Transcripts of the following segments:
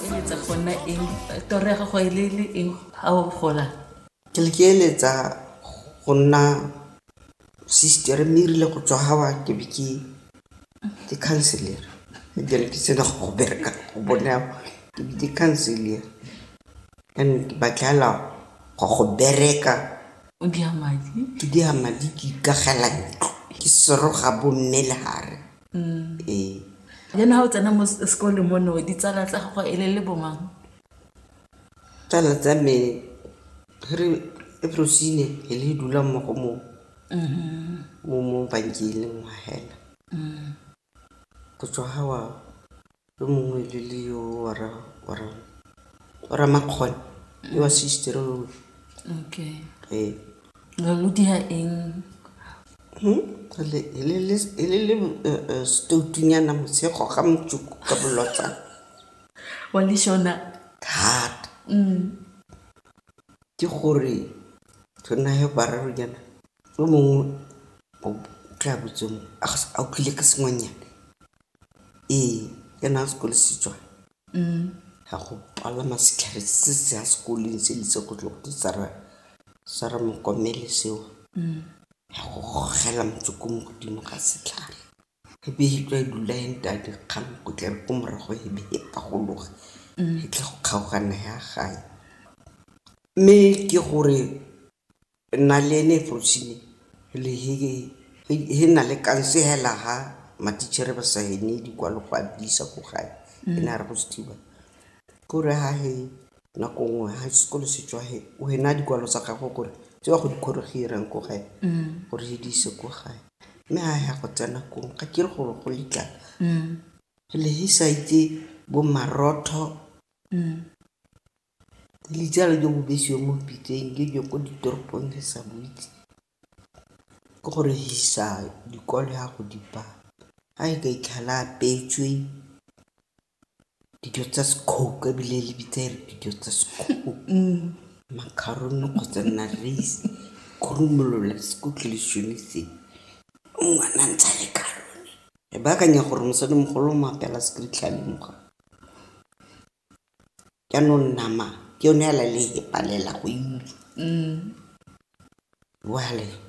eletsa go nna eng toro ya gago e le le eng ga o gola ke le ke eletsa go nna sister mme erile go tswa gawa ke be ke ke counselor ebile ke sena go go bereka go bona ke be ke counselor and ke batlela go go bereka o dia madi ke dia madi ke ikagela ntlo ke seroga bomme le gare Jaanong ha o tsena mo sekolong mo no ditsala tsa gago e le le bo mang? Tsala tsa me re rosine e le dula mo go mo mo mo bankeng le ngwa hela. Go tswa ha wa Yo mongwe le le yo wa ra wa ra wa ra makgone le wa sister o okay eh re lo dira eng Hmm? Re le e le le e le le eh, eh, stoutunyana motshego ga motsuko ka bolotsa wa le shona thata mm ke gore re nayo bararonyana yo mongwe o tla botse mongwe a ga se- a utlwile ka sengwenyana Ee, ke ne a sekolo se tswa ga go palama setlhare se se ya sekoleng se le se go tlo go sa re mokomele seo ya go gogela motsoko mo godimo ga setlhare e be e tswa e dula e nteya dikgang ko tleng ko morago e be e pagologa e tla go kgaogana ya gae mme ke gore Naleni Frosini le hi hi na le kansehela ha matitjhere ba sa hene dikwalo go a disa ko gae e ne a re go se thiba kore ha he nako nngwe ha sekolo se tswa he o hena dikwalo tsa gagwe gore tse wa go dikgoro ge irang ko gae gore he di ise ko gae mme ha ya go tsena kong ga ke re gore go letla le he sa itse bo marotho Dijalo jo bo besiwang mo pitseng ke jo ko ditoropong re sa bo itse ke go re isa dikole ya go di ba ga e ka itlhela a apeetswe dijo tsa sekhoukhou ebile le bitsa e re dijo tsa sekhoukhou, macaroon kgotsa yona raise kgorumolola ngwana a ntsha le carone. Re baakanya gore mosadimogolo o mo apeela . Jaanong nama ke yone hela le e palela go e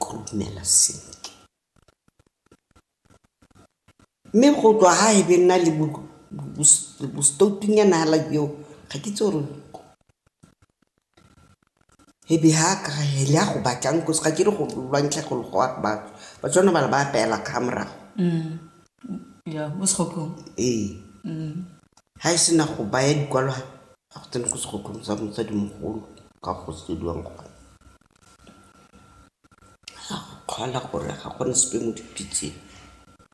khurumela sentle. Mme go tswa ha e be nna le bo-stoutu-nyana hela joo, ga ke itse gore. E be ha ka he le ya go batlang cause ga ke re go lwantsha go logoa batho ba tshwana bala ba apeela ka fa morago ya mo segokong ee ga e sena go baya dikwalwa ga go tsene ko segokong sa motsadimogolo ka go sediwang gona kgala gore ga gone sepe mo dipitseng.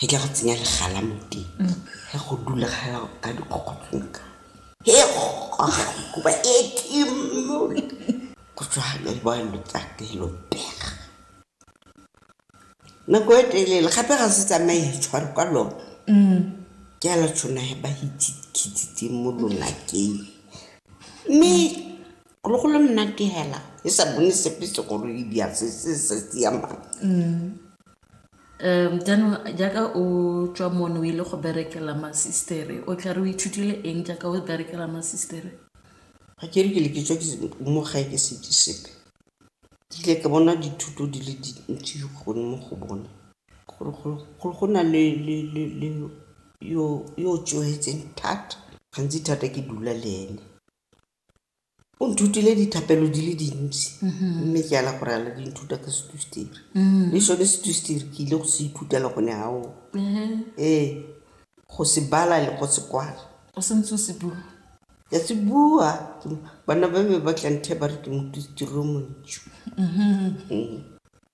Ke tla go tsenya legala mo teng. Ge go dula gala ka dikgokgotlonka. He goga kuba e kimo. Go tswa le ba lo tsate lo pega. Nako e telele gape ga se tsamaye tshware kwa lo. Ke a la tshona he ba hitse khitsitse mo lona ke. Mme lo go le monate hela e sa bone sepe se go le di a se se se se ya mang. Jaanong jaaka o tswa mono o ile go berekela masistere o tla re o ithutile eng jaaka o berekela masistere? Ga ke re ke le ke tswa mo gae ke setse sepe, ke ile ka bona dithuto di le dintsi gone mo go bone, gore go na le yo o tsohetseng thata, gantsi thata ke dula le ene. O nthutile dithapelo di le dintsi mme ke ala gore ala di nthuta ka setusteri le sone setusteri ke ile go se ithutela gone gao ee go se bala le go se kwala o sentse o se bua ya se bua bana ba be ba tla nthe ba re ke motusteri o montšhu